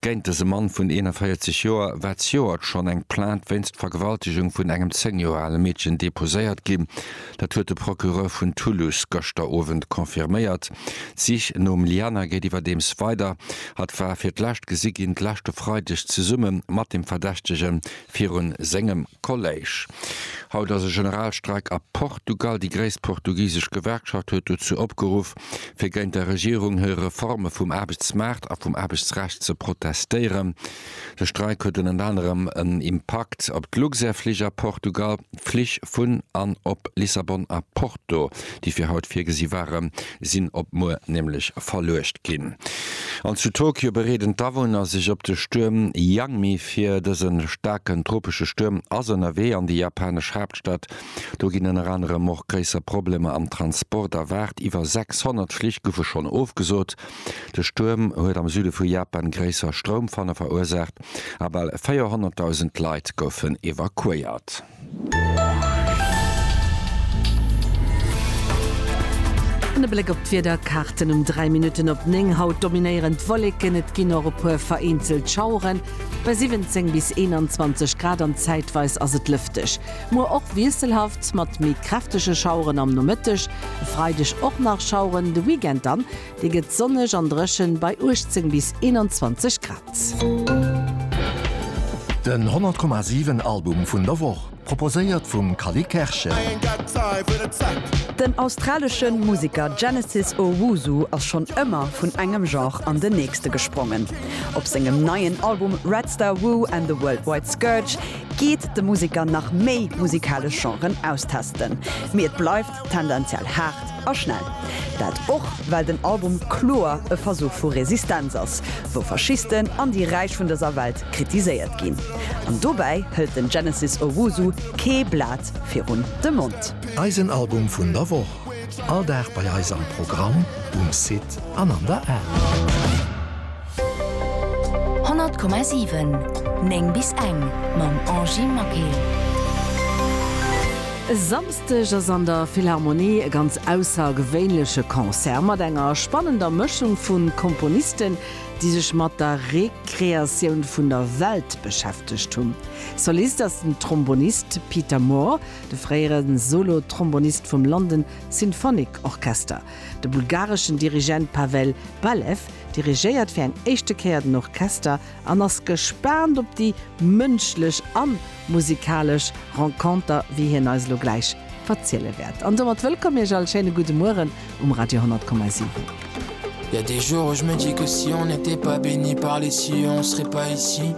Géint dëse Mann vun 41 Joer war zejoert schonn eng Plainte wéinst Vergewaltegung vun engem 10 Joer ale Meedchen deposéiert ginn. Dat huet de Procureur vun Toulouse gëschter Owend confirméiert. D'Sich nom Liana geet iwwerdeems weider. Hatt war fir d'lescht gesi ginn d'leschte Freideg zesumme mat dem Verdächtege viru sengem Kolléisch. Haut ass e Generalstreik a Portugal. Déi gréisst portugisesch Gewerkschaft huet dozou opgeruff, fir géint der Regierung hir Reforme vum Aarbechtsmaart a vum Aarbechtsrecht ze protestéieren. De Streik huet ënnert anerem en Impakt op d'Luxair-Flich a Portugal. D'Flich vun an op Lissabon a Porto, déi fir haut virgesi ware, sinn op muer nämlech verluecht ginn. An zu Tokio bereeden d'Awunner sech op de Stuerm Yangmi vir. Dëse staarken tropesche Stuerm ass ënnerwee an déi japanesch Haaptstad. Do ginn ënner anerem och gréisser Problemer am Transport erwaart, iwwer 600 Flich goufe schonn ofgesot. De Stuerm huet am Süde vu Japan gréisser Stroumfanne verursaacht a bal 400.000 Leit goufen evakuéiert. An e Bléck op d'Wiederkaarten um 3 Minutten op 9. Haut dominéieren d'Wolleken, et ginn och e puer vereenzelt Schaueren bei 17 bis 21 Grad an zäitweis ass et lëfteg. Muer och wiesselhaft mat méi kräftege Schaueren am Nomëtteg. E Freideg och nach Schaueren, de Weekend dann dee gëtt sonneg an dréchen bei 18 bis 21 Grad. Den 100 Komma 7 Album vun der Woch, proposéiert vum Cally Kerschen. Den australesche Museker Genesis Owusu ass schonn ëmmer vun engem Genre an den nächste gesprongen. Op sengem neien Album Red Star Woo and the Worldwide Scourge, geet de Museker nach méi musikalesch Genren austesten, mee et bleift tendenziell haart a schnell. Dat och well den Album kloer e Versuch vu Resistenz ass, wou Faschisten an déi Räich vun dëser Welt kritiséiert ginn. An dobäi hëlt den Genesis Owusu kee Blat virun de Mond. Eisen Album vun der Woch, all Dag bei eis am Programm, um Site an an der App. 100,7 9 bis eng mam Angie Maquet. E Samsdeg ass an der Philharmonie e ganz aussergewéinleche Concert mat enger spannender Mëschung vu Komponisten, déi sech mat der Rekreatioun vun der Welt beschäftegt hunn. Solist ass den Trombonist Peter Moore, de fréiere Solo-Trombonist vum London Symphonic Orchester. De bulgareschen Dirigent Pavel Balew dirigéiert fir eng éischte Kéier den Orchester an ass gespaant op déi mënschlech a musikalesch Renconter, wéi hien eis elo gläich verziele wäert. An domat wëllkomm Iech all, schéine gudde Mueren um Radio 100,7.